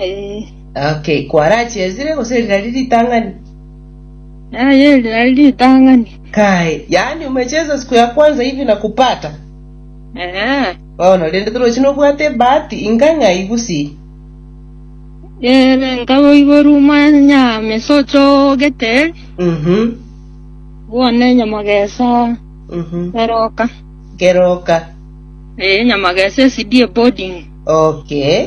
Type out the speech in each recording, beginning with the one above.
Eh. Okay, kwarachiesire gose eri nari ritang'ani? Aye eri nari ritang'ani. Kae, yaani umecheza siku ya kwanza hivi na kupata? Eh. Bono, rende torochi nobwate ebahati inga ng'ai gusii? Ere nkaboiborwa omwanya mesocho ogeteri, Mhm, bwone nyamagesa mhm. eroka. Keroka. Eh, nyamagesa esidie boarding. Okay.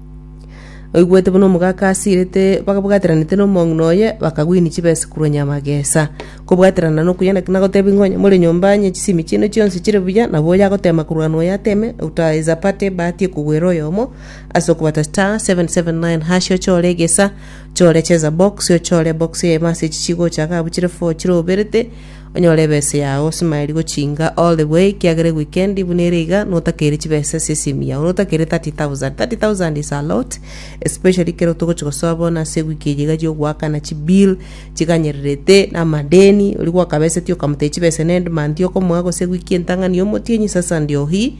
Oigwete buna omogaka asirete bagabwataranete nomong'ina oye, bakagwinia chibesa korwa nyamagesa. Kobwaterana nokoyia naki nagotebia ng'a onye more nyomba onye chisemi chiaino chionsi chire buya, nabo oyo agoteema korwa noyo ateeme, otaesa parte ebahati ekogwera oyomo. Ase okobata star seven seven nine hash ochore egesa, ochore cheza box, ochore ebox eyemo ase echi chigocha iga abwo chire four chire oberete, Onyore ebesa yao osmaeri gochinga all the way ekiagera ewikendi buna ere iga notakeire chibesa ase esimu yao notakeire 30000 30000 is a lot especially ekero togochi gosoa bono ase ewiki eye iga chi'ogoakana chibill chiganyererete na amadeni oria gwakabeseti okamotebi chibesa na endmonth okomoa gose ewiki entang'ani omotienyi sasa ndio hii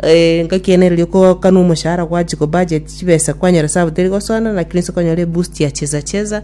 eh, ngaki ene riria okoakanwa omoshahara gwachi kobudget chibesa kwanyora sabu teri gosoana lakini ase okonyora eboost ya cheza cheza